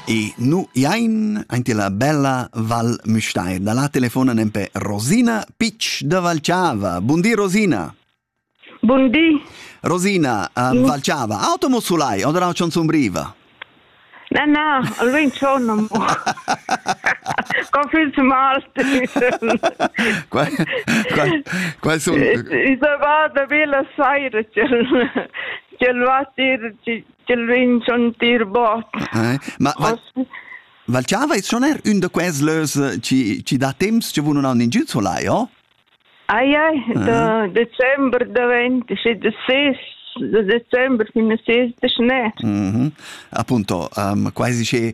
E nu iain aint la bella Val Müstair. Da la telefona nempe Rosina Pitsch da Valciava. Bundi Rosina. Bundi. Rosina, uh, mm. Valciava, automo sulai, oder auch schon zum Riva? Na, na, allora sono Confins Malti. Qual, qual, qual sono? Eh, I sono vado a bella saira, c'è il vatir, ci Ch'el vegn sentir bot. Ma Val Chava es schon er ün da quels lös chi chi dà temps cha vun nun haun ingün solai, o? Ai ai, da december davent schi da ses da december fin a ses da schnè. Mhm. Appunto, um, quasi che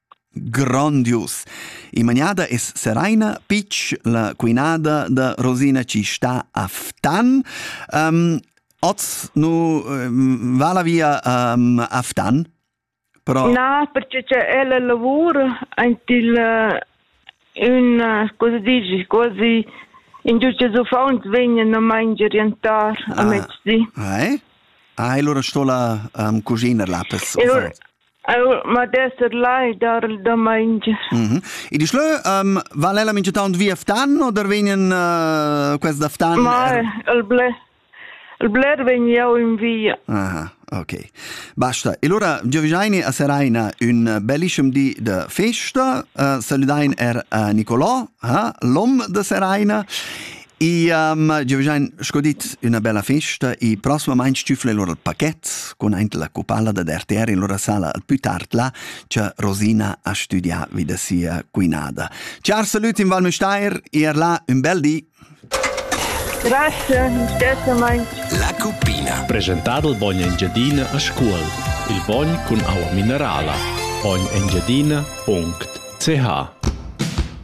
Grondius! Imaniada es Seraina Pitsch, la cuinada da Rosina chi sta a Ftan. Um, oz nu um, va la via um, a Ftan? Però... Na, perché che ella lavora ant il un cosa dici, quasi in giusta uffant vegnan a mangiar jantar a ah, mezdi. Ah, eh? Ah, e allora sto la um, cuciner là per uffant. Eu modest lai dar il domaingi. Mm -hmm. E dici lö, um, val ella mincha taunt via Ftan o der vegnan uh, quest da Ftan? Ma er... il bler, il bler vegn jau in via. Aha, ok. Basta. E allora Giovanni a Seraina un bellissimo di de festa. Uh, saludain er uh, Nicolò, uh, l'om de Seraina. Iam giovgiain sco dit üna bella festa e prossimamaing stüfla lur il paquet cun aint la cupalla dad RTR in lura sala al plü tard là cha Rosina ha studià vi da sia cuinada. Ciar salut in Val Müstair, er là ün bel di! Grazie, stessamaing. La cuppina. Presentado il bogn Engiadina a Scuol. Il bogn cun aua minerala. Ognengiadina.ch